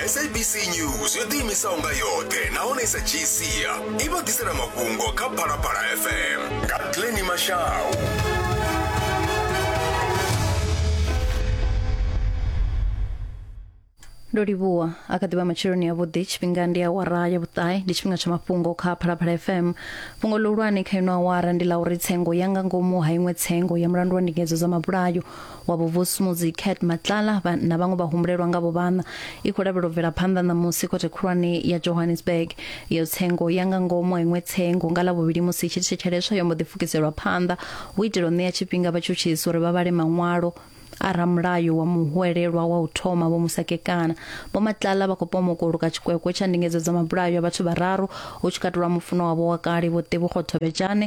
sabc news yo ḓiimisaho nga yoṱhe nahone sa gcia i vha ḓisela mafhungo kha phalaphala fm nga glenni mashau ndo livhuwa a kha ḓivha matsheloni avhuḓi tshifhinga ndi awara ya vhuṱae ndi tshifhinga tsha mafhungo kha phalaphala fm fhungo ḽihulwane kha ino awara ndi ḽa uri tsengo ya nga ngomu ha iṅwe tsengo ya mulandu wa ndingedzo dza mabulayo wa vhuvhusumudzi cat matlala vha- na vhaṅwe vhahumbulelwa nga vhuvhana i khou lavhelwa u bvela phanḓa ṋamusi khothe khulwane ya johannesburg yo tsengo ya nga ngomu ha iṅwe tsengo nga lavhuvhili musi i tshi thetsheleswa yo mbo ḓi pfukiselwa phanḓa hu itela u ṋea tshifhinga vhatshutshisi uri vha vhale maṅwalo a ramulayo wa muhwelelwa wa u thoma vho musakekana vho matlala vha khou pomoka u luka tshikwekwe tsha ndingedzo dza mabulayo a vhathu vhararu hu tshi katelwa mufuno wavho wa kale vho tevhukgothobetshane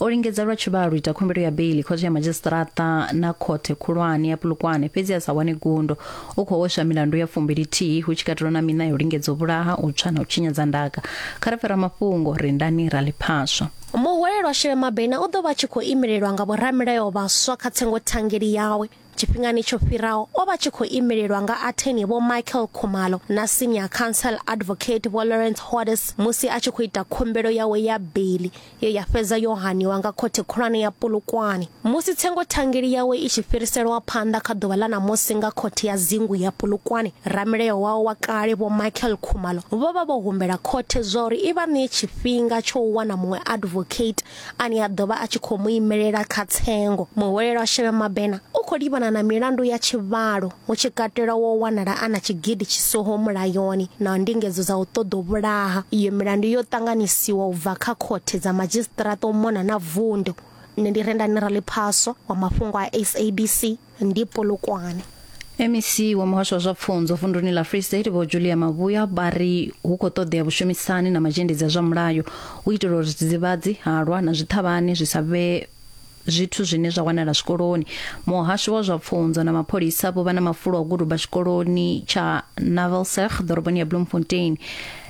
O lingedza lwa tshivhalo u ita khumbelo ya beili khothe ya madzhisiṱiraṱa na khothe khulwane ya Polokwane fhedzi a sa wane gundo. U khou hweswa milandu ya fumbili-thihi hu tshi katelwa na miṋa ya u lingedza u vhulaha, u tswa na u tshinyadza ndaka. Kha ri pfe ramafhungo Rindani Raliphaswa. Muhwelelwa Shirema Bena u ḓo vha a tshi khou imelelwa nga vhoramilayo vhaswa kha tsengothangeli yawe. Tshifhingani tsho fhiraho o vha tshi khou imelelwa nga atheni Vho Michael Khumalo na Senior Counsel Advocate Vho Lawrence Hodes musi a tshi khou ita khumbelo yawe ya beiḽi ye ya fhedza yo haniwa nga Khothe Khulwane ya Polokwane musi tsengothangeli yawe i tshi fhiriselwa phanḓa kha ḓuvha ḽa ṋamusi nga Khothe ya Dzingu ya Polokwane. Ramilayo wawe wa kale Vho Michael Khumalo vho vha vho humbela Khothe zwauri i vha ṋee tshifhinga tsho u wana muṅwe advocate ane a ḓo vha a tshi khou mu imelela kha tsengo. Muhwelelwa Shebe Mabena u khou livhana na milandu ya tshivhalo hu tshi katelwa wo wanala a na tshigidi tshisoho mulayoni na ndingedzo dza u ṱoḓa u vhulaha. Iyo milandu yo ṱanganisiwa u bva kha khothe dza madzhisiṱiraṱa u mona na vundu. Nṋe ndi Rendani Raliphaswa wa mafhungo a SABC. ndi polokwane mec wa muhasho wa zwa pfunzo vunduni la free state vho julia mavhuya vha ri hu khou ṱoḓea vhushumisani na mazhendedzi a zwa mulayo u itela uri zwidzivhadzi halwa na zwiṱhavhani zwi sa vhe zwithu zwine zwa wanala zwikoloni muhasho wa zwa pfunzo na mapholisa vho vha na mafulo a u guduba tshikoloni tsha navelserg ḓoroboni ya bloemfontein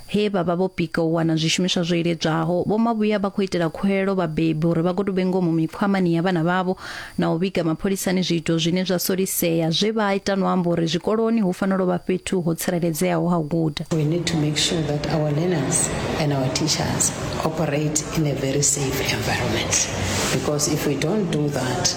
He vha vha vho pika u wana zwishumiswa zwo iledzwaho, vhomavhuya vha khou itela khuwelelo vhabebi uri vha gotube ngomu mikhwamani ya vhana vhavho na u vhiga mapholisani zwiito zwine zwa solisea zwe vha ita no amba uri zwikoloni hu fanela u vha fhethu ho tsireledzeaho ha u guda. We need to make sure that our learners and our teachers operate in a very safe environment because if we don't do that,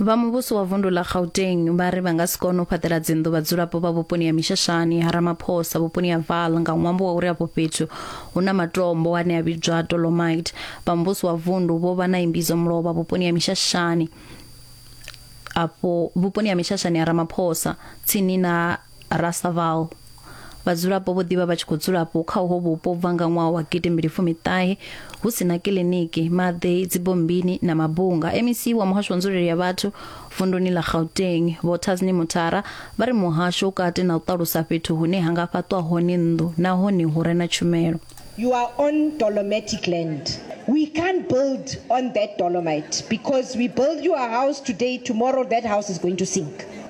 Vha muvhuso wa vundu ḽa Gauteng vha ri vha nga si kone u fhaṱela dzinnḓu vhadzulapo vha vhuponi ha Mishashani ha Ramaphosa vhuponi ha Vaal nga ṅwambo wa uri afho fhethu hu na matombo ane a vhidzwa dolomite. Vha muvhuso wa vundu vho vha na imbidzo mulovha vhuponi ha Mishashani afho vhuponi ha Mishashani ha Ramaphosa tsini na Rasaval. Vhadzulapo vho ḓivha vha tshi khou dzulapo kha uho vhupo bva nga ṅwaha wa gidimmbili fumiṱahe hu si na kiḽiniki, maḓi, dzibombini na mabunga. MEC wa muhasho wa nzulele ya vhathu vunduni ḽa Gauteng, Vho Tasni Mutara, vha ri muhasho u kati na u ṱalusa fhethu hune ha nga fhaṱwa hone nnḓu nahone hu re na tshumelo. You are on dolomitic land. We can't build on that dolomite because we build you a house today, tomorrow that house is going to sink.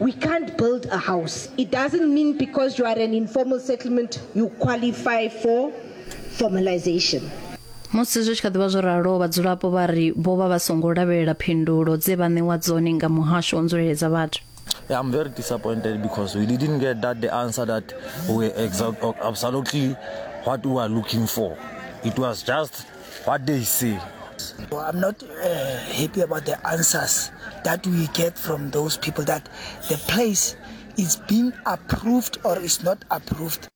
We can't build a house. It doesn't mean because you are an informal settlement you qualify for formalization. musi zwi tshi kha ḓivha zwo ralo vhadzulapo vha ri vho vha vha songo lavhelela phindulo dze vha ṋewa dzone nga muhasho wa nzuleledza vhathu Yeah, I'm very disappointed because we didn't get that the answer that we exact absolutely what we were looking for. It was just What they say. Well, I'm not uh, happy about the answers that we get from those people that the place is being approved or is not approved.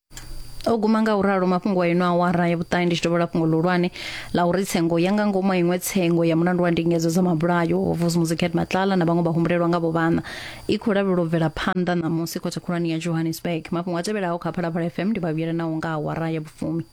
o guma nga u ralo mafhungo a ino awara ya vhuṱahe ndi tshi dovhola fhungo ḽihulwane ḽa uri tsengo ya nga ngomu a iṅwe tsengo ya mulandu wa ndingedzo dza mabulayo ho vusi muziket matlala na vhaṅwe vha humbulelwa nga vhovhana i khou lavhelela u bvela phanḓa ṋamusi khothe khulwane ya johannesburg mafhungo a tevhelaho kha phalaphala fm ndi vhavhuyela nawo nga awara ya vhufumi